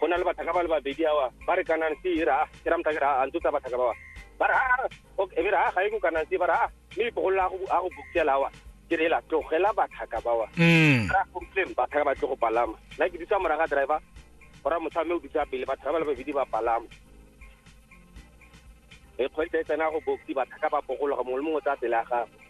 go na le bathaka ba le babedi awa ba re kanang se e re a ke ra motha ke re a ntse tsa bathaka ba ba re a okay e re a ga e go kanang se ba re a mme ipogolola a go bukela awa ke re la tlogela bathaka ba wa mm. ra go tleng bathaka ba tle go palama nna ke dutsa moraga driver gore motho mme o dutsa pele batho ba le babedi ba palama e kgwedi e tsena go boksi bathaka ba bogologa mongwe le mongwe tsa pele ya gago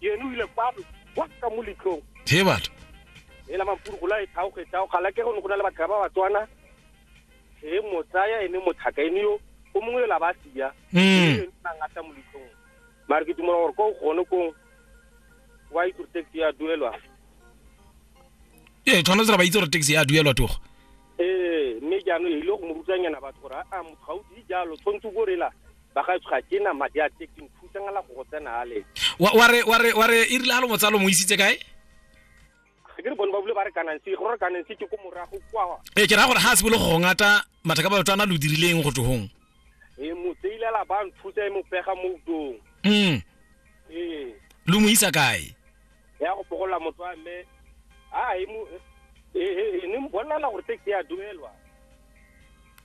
yene o ile kwano wa ka mo letlong he batho e la mampuru go la e thao ge thao gala ke go ne go na le batho ba ba tswana e mo tsaya ene mo thaka ene yo o mongwe la ba sia mm na ngata mo letlong mara ke dumela gore ko gone ko wa itse taxi ya duelwa e tshwanetse ra ba itse gore taxi ya duelwa togo eh mme jaanong e ile go mo rutanyana batho gore a motho ga o di jalo tshwanetse o bo rela bagaetsho ga ke na madi a taxi nthusangela go go tsena ale wa wa re wa re wa re e rile ha lo motsalo mo isitse kae ga ke re bone ba bule ba re kananse go re kananse ke ko morago kwa e ke ra gore ha a se bolo go ngata matha ka batho ana lo dirileng go togong e mo tseilela ba nthusa e mo pega mo utong mm ee lo mo isa kae ya go pogolla motho wa mme a e mo e e- e ne mbolela gore taxi ya duelwa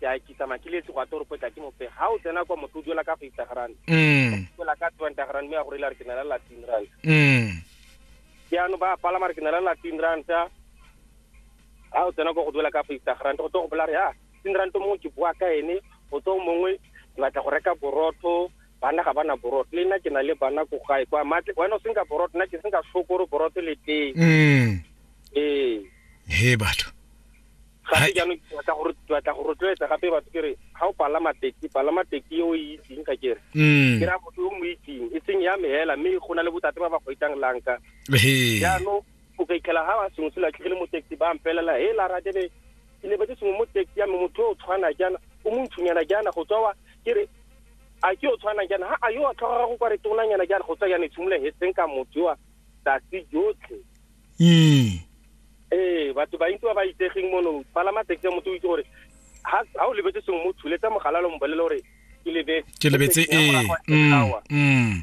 ke a ke tsamaya ke letse go a toropo tla ke mope ha o tsena kwa motho o duela ka fifty rand mm duela ka twenty rand mme a go reila re ke na le latin rand mm jaanong ba palama re ke na le latin rand ha o tsena kwa go duela ka fifty rand go tlo go bola re ya tin rand mongwe ke bua ka ene o tlo mongwe ke batla go reka borotho bana ga bana borotho le nna ke na le bana ko gae kwa matle wena o senka borotho nna ke senka shokoro borotho le teng mm ee he batho gape jaanong ke batla gore batla go rotloetsa gape batho ke re ga o palama teki palama teki e o e itseng ga kere mm. ke raya motho o mo itseng e seng ya me hela mme go na le botate ba ba go itang lanka jaanong o ka ikela ga ba sengwe se latlhegile mo taxi ba mpelela he la ratebe ke ne ba ke sengwe mo taxi ya me motho o tshwana jaana o montshonyana jaana go tswa wa ke re a ke o tshwana jaana ha a yo a tlhoga go kwa re tonanyana jaana go tswa jaana e tshimole he seng ka motho wa tsatsi jotlhe mm. ee batho ba ntse ba ba itsegeng mono palama taxi motho o itse gore ha o lebetse sengwe mo thuletsa mogalalo mbolele gore ke lebetse ke lebetse ee mm, mm.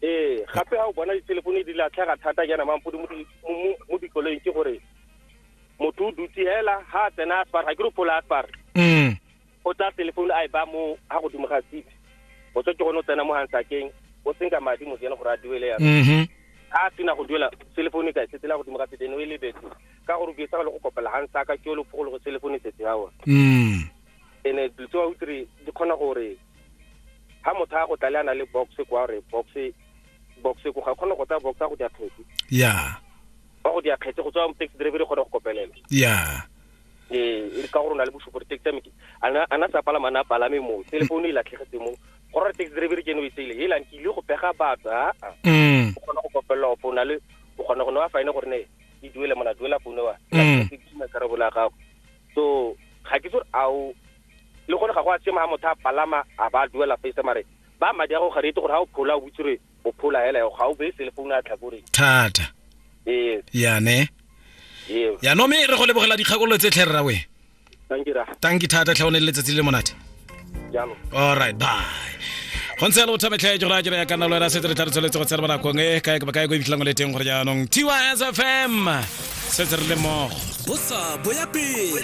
ee gape ga o bona dithelefone di latlhega thata jaana mampodi mo dikoloing ke gore motho o dutse hela ha tsena a spar ga ke re phola a spar mm. o tsaya telephone a e ba mo ga godimo ga seat o tswa ke gone o tsena mo hansakeng o senka madi mo tsena gore a duele yana mm-hmm. a sena go duela cellphone e ka e setela godimo ga setene o e lebetse ka gore o ke sa go kopela hansaka ke o le phogolo go cellphone e setse ya one mm. ene dilo tse wa utlwire di kgona gore ha motho a go tlale a na le box kwa gore box box ko ga kgona go tsaya box a go dia kgetse ya wa go dia kgetse go tswa mo taxi driver e kgona go kopelela ya ee e ka gore o na le bosupo taxi ya meke a na sa palama a na palame mo telefono e latlhegetse mo go rora taxi driver ke ene o e tseile helang ke ile go pega batho a mm. o kgona go kopelela opo o na le o kgona go ne wa fine gore ne e duele mona duela foune wa mm. karabo la gago so ga ke tsore ao le gone ga go a tsema ga motho a palama a ba duela face mare ba madi a go ga rete gore ga o phola o botsire O phola hela yo ga o be cell phone a tlhakoreng. Thata. Ee. Ya ne. Ee. Ya no me re go lebogela dikgakololo tse tlhe rra we. Tanki ra. Tanki thata tlhe o ne le letsatsi le monate. Jalo. All right, bye. go ntse le bothame tlhae jora jera ya kana lo era setse re tla re tsholetse go tsena bona kong e kae ba kae go ibitlhang le teng gore jaanong TYS FM setse re le mogo bosa boya pele